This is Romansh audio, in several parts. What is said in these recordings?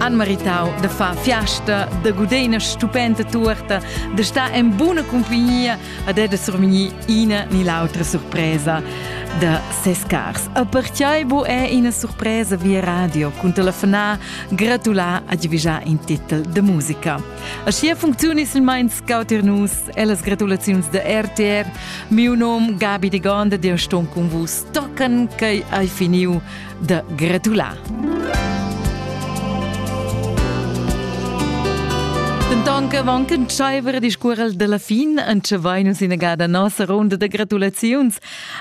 han meritau de far fiasta, de guder ina stupenda tuorta, de star en buna compagnia ad e de survegnir ina ni l'autra surpresa de ses cars. A perciai bo è ina surpresa via radio cun telefonar, gratular a divigiar in titel de musica. A sia funzioni silmein scautir nus e las gratulaziuns de RTR. Miu nom Gabi de Gonda, de ston con vus tocan che ai finiu da gratular. Denton che van che tschaiver discuorel della fin, anche vai nus inagada nossa ronda de gratulaziuns.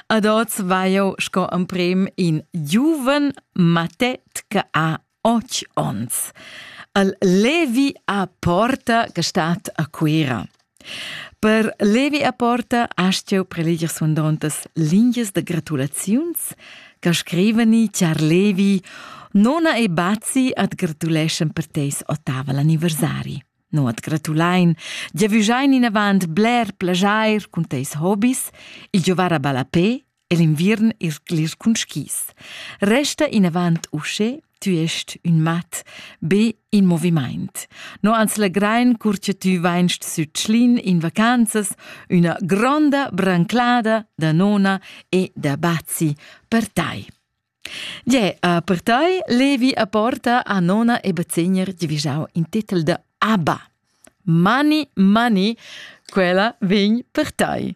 Ad oz vai jo sco amprem in giuven matet che ha och ons. Al Levi a porta che stat a Cuira. Per Levi e Porta hast jeu preleger suandontas lingias da gratulaziuns che scrivani char Levi, nona e bazi at gratuleschan per teis ottaval anniversari. No at gratulain, giavüschain inavant bler plajair cun teis hobis, il giovar a ballapè e l'inviern es glisch cun skis. Resta inavant usche, tü est ün mat, be in movimaint. No ans legrain cur che tü vainst sü Tschlin in vacanzas üna gronda branclada da nona e da bazi per tai. Gie, a per tai levi a porta a nona e bazegner divigiau in titel de ABBA. Money, money, quella vegn per tai.